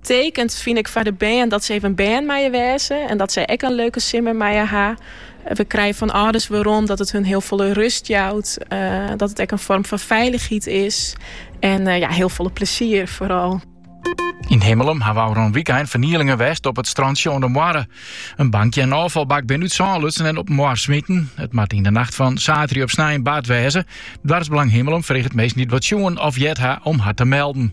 Tekent fyn ik foar de bern dat se even bern meie wêze en dat se ek in leuke simmer meie ha. We krije fan âlders werom dat it hun hiel folle rust jout, dat it ek in foarm fan feilichheid is en ja, hiel folle plesier foaral. Yn Himmelum hawwe ôfrûne wykein fernielingen west op it strantsje oan de Moarre. In bankje en ôffalbak binne út sân lutsen en op de Moarre smiten. It moat yn de nacht fan saterdei op snein bard wêze. Doarpsbelang Himmelum freget minsken dy't wat sjoen of heard ha om har te melden.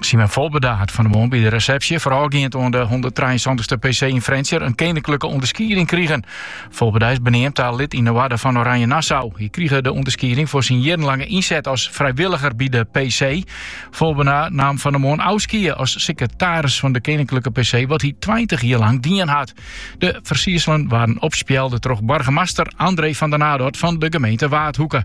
Simon Volbeda hat fan de moarn by de resepsje foarôfgeand oan de 173ste PC yn Frjentsjer in keninklike ûnderskieding krigen. Volbeda is beneamd ta lid yn de Oarder fan Oranje Nassau. Hy krige de ûnderskieding foar syn jierrenlange ynset as frijwilliger by de PC. Volbeda naam fan de moarn ôfskie as sekretaris fan de keninklike PC, wat hy 20 jier lang dien hat. De fersierselen waarden opspjelde troch boargemaster André van de Nadort fan de gemeente Waadhoeke.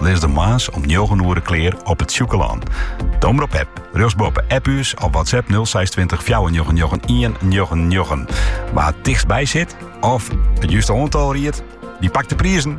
Lizze de moarns om njoggen oere klear op It Sjûkelân. De Omrop-app, rjochtsboppe App ús of WhatsApp 06 20 499 199. Wa it tichtst by sit of it juste oantal ried, dy pakt de prizen.